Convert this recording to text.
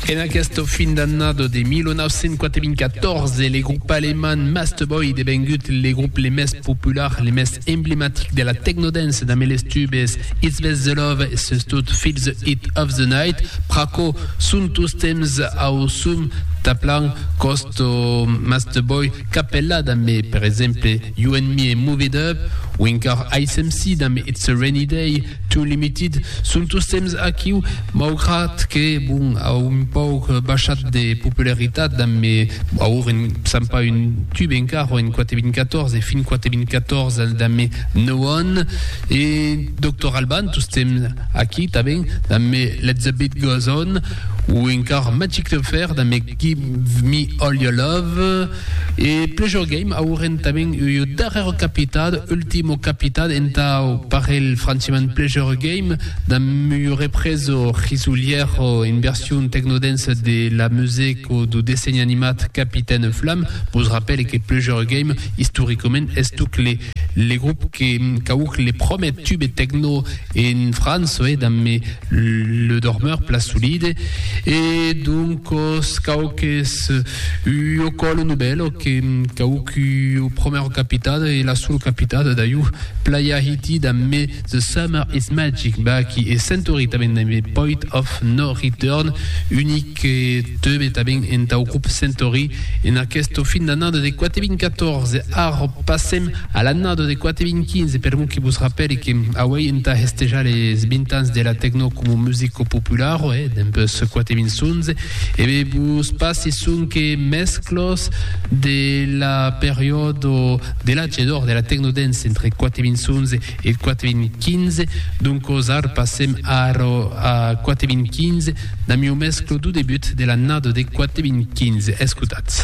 En aquesta fin d'annada de 1994, le grop alemand Masteboy devengut le grop le mès popular, le mès emblematic de la technodance damb les tubes It's Best The Love e sustot Feel The Heat Of The Night, pr'aquò son tostemps au sum taplant cost Masteboy capella damb per exemple You And Me e Move It Up, o encara Ice MC damb It's A Rainy Day. Too Limited son tostemps aquiu, maugrat que, bon, a un pauc baishat de popularitat damb aur en sap pas un tube encara en 4014 e fin 4014 damb No One e Doctor Alban tostemps aquí tanben damb Let the Beat Goes On o encara Magic Affair damb Give Me All Your Love. E Pleasure Game auren tanben ua darrèra capitada, Ultimo Capitat, entau parelh francement Pleasure Game, damb ua represa risolièra en version tecnodensa de la musèca dau dessenh animat Capitaine Flam. Vos rapèle que Pleasure Game istoricament estuc le grop qu'auc le promèr tube tecno en França, damb Le dormeur pla solide e doncos cau qu'es ua còla novèla que cau qu'ua promèra capitada e la sola capitada dai ua playa hitida me The Summer is Magic bah qui e Century tanben dai me Poit of No Return unic que teube tanben entau grop Century en aquesta fin d'annada de 4 2014 arra passem A l'annada de 4.015 permon que vos rapèli que auèi entà hestejar les 20 ans de la tecno como musico popularo, eh, dempuèi 4.011, e be vos passi sonque mesclos de la periòdo de l'age d'or de la tecno dance entre 4.011 e 4.015, doncos ar passem ara a 4.015 damb ua mesclo du debut de l'annada de 4.015. Escotatz.